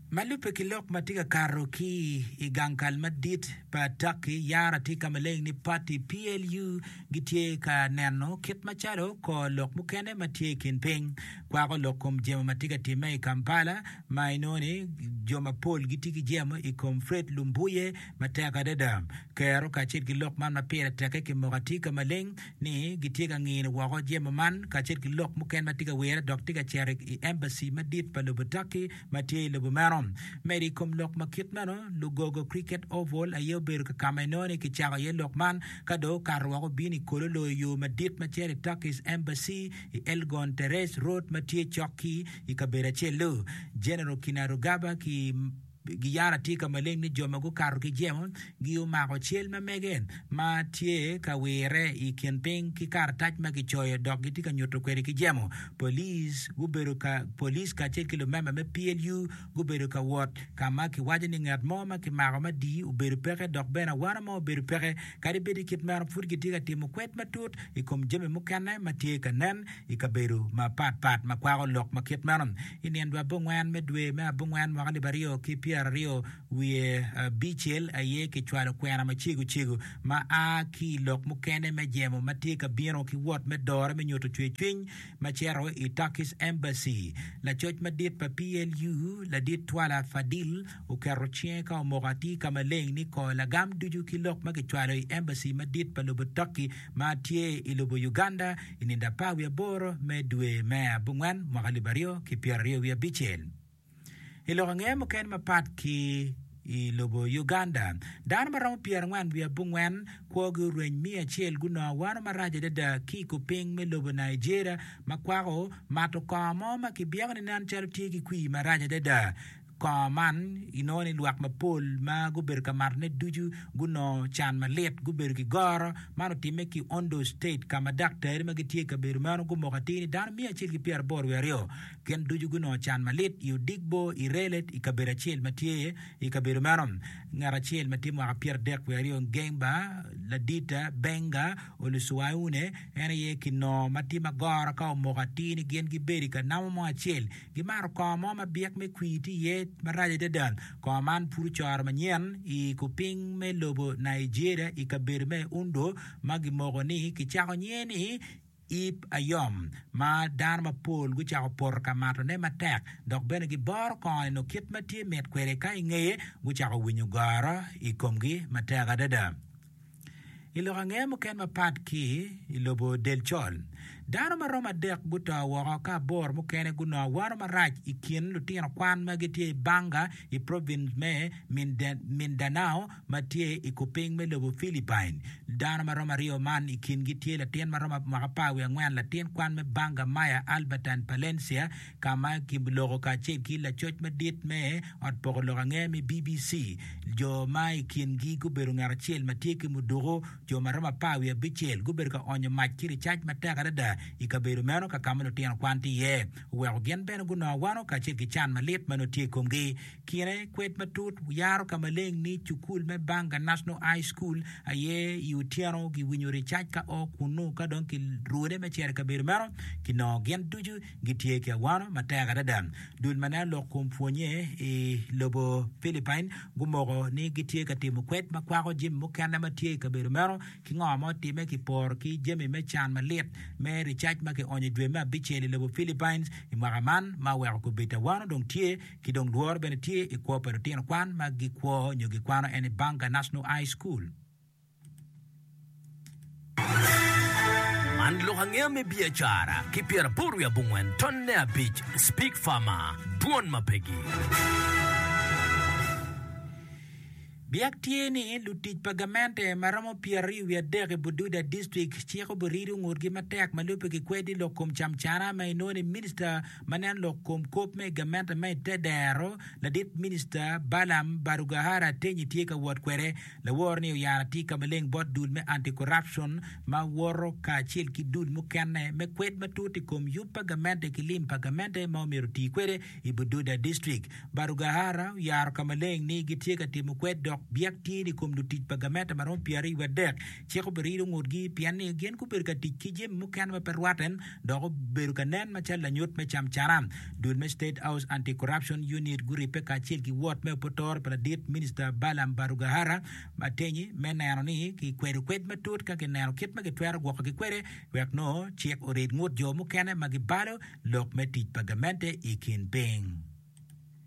Ma lubbe ki lok ma tye ka kato ki i gang kal madit pa Turkey, yara tye ka ma leng ni pati PLU gitye ka neno kit macalo kor lok mukene ma tye i kin piny kwako lok i kom jemo ma tye ka timme i Kampala ma inongo ni jo mapol gitye ki jemo i kom Fred Lumbuye matek adada. Kero kacel ki lok man ma pire teke kimoko atika maleng. ni gitye ka ngino woko jemo man kacel ki lok mukene ma tye ka wirre dok tye ka cito i embaci madit pa lobo Turkey ma tye i lobo meno. Medo i kom lok ma kit meno, lugogo Cricket Oval aye obedo kakama inongo ni kicako iye lok man ka dong okato woko obino i kolo loyo yo madit ma cito i Turkey's Embassy i Elgon Terrace Road ma tye cok ki i kabedo acel-lu. General Kinarugaba ki Giyara tye ka maleng ni jo ma gukato ki jemo gumako cal ma mege ma tye ka wirre i kin piny ki karatac ma kicoyo dok gitye ka nyuto kwede ki jemo. Police gubedo ka Police kacel ki lumemba me PLU gubedo ka wot ka ma kiwaco ni ngat mo ma kimako ma di obedo peke dok bene awano mo obedo peke. Kadi bed i kit meno, pud kitye ka timo kwed matut i kom jami mukene ma tye ka nen. I kabedo mapatpat ma kwako lok ma kit meno, i nino abongwen me dwe me abongwen mwaka alip aryo ki pyero aryo wiye abicel aye kicwalo kwena macego cego ma a ki i lok mukene me jemo ma tye ka bino ki wot me dore me nyuto cwercwiny ma cito i Turkish Embassy. Lacoc madit pa PLU, Ladit Twala Fadil, oketo cinge ka omoko atir ka maleng ni kor lagam ducu ki lok ma kicwalo i Embassy madit pa lobo Turkey ma tye i lobo Uganda i nino apar wiye aboro me dwe me abongwen mwaka alip aryo ki pyeraryo wiye abicel. I lok angeye mukene mapat ki i lobo Uganda, dano ma romo pyerangwen wiye abongwen kwogi orweny miya acel gunongo wano marac adada ki i kor piny me lobo Nigeria ma kwako mato kongo mo ma kibyeko ni nen calo tye ki kwii marac adada. Kongo man inongo ni lwak mapol ma gubedo ka matone ducu gunongo can malit, gubedo ki goro. Man otimme ki Ondo State ka ma daktari ma gitye i kabedo meno gumoko atir ni dano miya acel ki pyeraboro wiye aryo gin ducu gunongo can malit i Odigbo, Irelet i kabedo acel ma tye i kabedo meno. Ngat acel ma tye mwaka pyeradek wiye aryo Ngemba Ladita Benga Olusuaune en aye kinongo ma tye ma goro ka omoko atir ni gin gibedo i ka namo mo acel Gimato kor mo ma byek me kwii tye iye marac adada. Kor man pud ocoro manyen i kupiny me lobo Nigeria i kabedo me Ondo ma gimoko ni kicako nyinge ni Ip Ayom, ma dano mapol gucako poto ka matone matek dok bene giboro kor-ni nyo kit ma tye mit kwede ka ingeye gucako winyo goro i komgi matek adada. I lok ange muken mapat ki i lobo del col, dano ma romo adek guto woko ka aboro mukene gunongo wano marac i kin lutino kwan ma gitye i Banga i provin me Mindanao ma tye i kupiny me lobo Philippine. Dano ma romo aryo man i kingi tye latin ma romo mwaka apar wiye angwen latin kwan me Banga Maya Albertine Palencia, ka ma giloko kacel ki lacoc madit me ot poko lok angeya me BBC, jo ma i kingi gubedo ngat acel ma tye ki muduku, jo ma romo apar wiye abicel gubedo ka onyo mac ki ricac matek adada i kabedo meno ka ma lutino kwan tye iye, oweko gin bene gunongo awano kacel ki can malit ma nongo tye i komgi. Kine, kwed matut yaro ka maleng ni Cukul me Banga National High School aye i otyeno giwinyo ricac ka o kunnu ka dong ki rwode me cito i kabedo meno, kinongo gin ducu. Gitye ki awano matek adada. Dul ma nen lok kun pwonnye i lobo Philippine gumoko ni gitye ka timo kwed ma kwako jami mukene ma tye i kabedo meno ki ngo ma otimme ki poro ki jami me can malit me ricac ma kionyo i dwe me abicel i lobo Philippines i mwaka man ma oweko kubit awano dong tye ki dong lworo bene tye i kwo pa lutino kwan ma gikwo nyo gikwano en ni Banga National High School. Man lok angeya me biacara ki pyeraboro wiye abongwen tonne abic Speke Farmer, Dwon ma pegi. Biak tye ni lutic pa gamente ma romo pyeraryo wiye adek i Bududa dictrict ciko burido ngutgi matek ma lubbe ki kwedi lok kom camcana ma inongo ni minista ma neno lok kom kop me gamente ma ite dero ladit minista Balam Barugahara Atenyi tye ka wot kwede Lawor ni oyaro atika maleng bot dul me Anti-Corruption ma woto kacel ki dul mukene me kwed matut i kom yub pa gamente ki lim pa gamente ma omyero oti kwede i Bududa District. Barugahara oyaro ka maleng ni gitye ka timo kwed dok byek tye ni kom lutic pa gamente ma romo pyeraryo wadek cik obiriyo ngutgi pien ni gin gubedo ka tic ki jami mukene ma pe rwate dok obedo ka nen macalo lanyut me camcara. Dul me State House Anti-Corruption Unit guribbe kacel ki wot me opotoro pa ladit minista Balaam Barugahara Matenyi me neno ni kikwedo kwed matut ka kineno kit ma kitwero gwokogi kwede wek nongo cik orid ngut jo mukene ma gibalo lok me tic pa gamente i kin piny.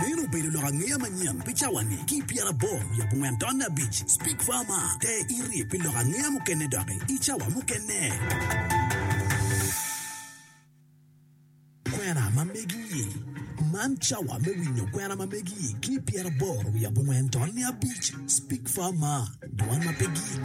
Meno obedo lok angeya manyen pi cawa-ni. Ki i pyeraboro wiye abongwen taun abic, Speke Farmer te iri pi lok angeya mukene doki i cawa mukene. Kwena ma megi-i, Man cawa me winyo kwena ma megi-i ki i pyeraboro wiye abongwen taun abic, Speke Farmer, Dwan ma pe gik.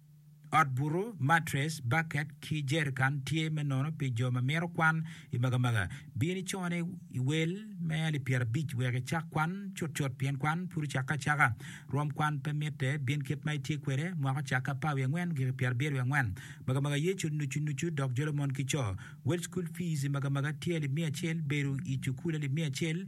Ot butu, matres, baket, ki jerikan tye me nono pi jo ma mito kwan. I magamaga, bin icone i wel me alip pyerabic wek icak kwan cutcut pien kwan pud ocakke acaka. Rwom kwan pe mitte, bin kit ma itye kwede, mwaka ocakke apar wiye angwen giki pyerabiro wiye angwen. Magamaga Yecu nucu nucu dok jolo mon ki co. Wel cukul fiz i magamaga tye alip miya acel, bedo i cukul alip miya acel,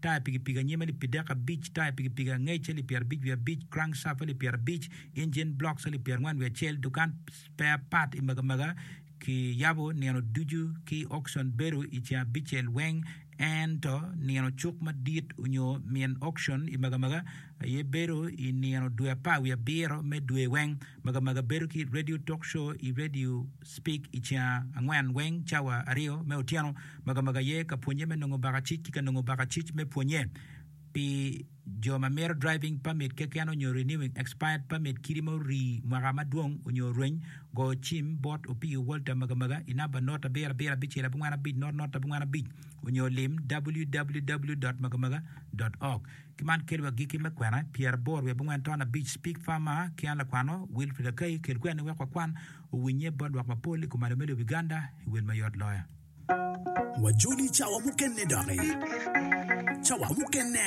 taya pikipiki anyim alip pi dek abic, taya pikipiki angec alip pi arabic wiye abic, crankshaft alip pi arabic, engine blocks alip pi arngwen wiye acel, dukan spare part i magamaga ki yabo nino ducu ki auction bedo i ceng abicel weng ento nino cuk madit onyo min auction i magamaga aye bedo i nino dwe apar wiye abiro me dwe weng, magamaga bedo ki radio talk show i radio. Speak i ceng angwen weng cawa aryo me otyeno ma ka magi aye ka pwonye me nongo bakacic ki ka nongo bakacic me pwonye pi jo ma mito driving permit keken onyo renewing expired permit kidi ma orii mwaka madwong onyo orweny go cim bot Opiyo Walter Magamaga i namba not abiro abiro abicel abongwen abic not not abongwen abic onyo lim www.magamaga.org ki man kelo agiki me kwena pyeraboro wiye abongwen ton abic Speak Far Mar ki an lakwano Wilfrid Akai kel kweni wek wakwan Owinnye bot lwak mapol i kumalo me lobo Uganda i wel mayot loyo. Wajoli cawa mukene doki. Cawa mukene.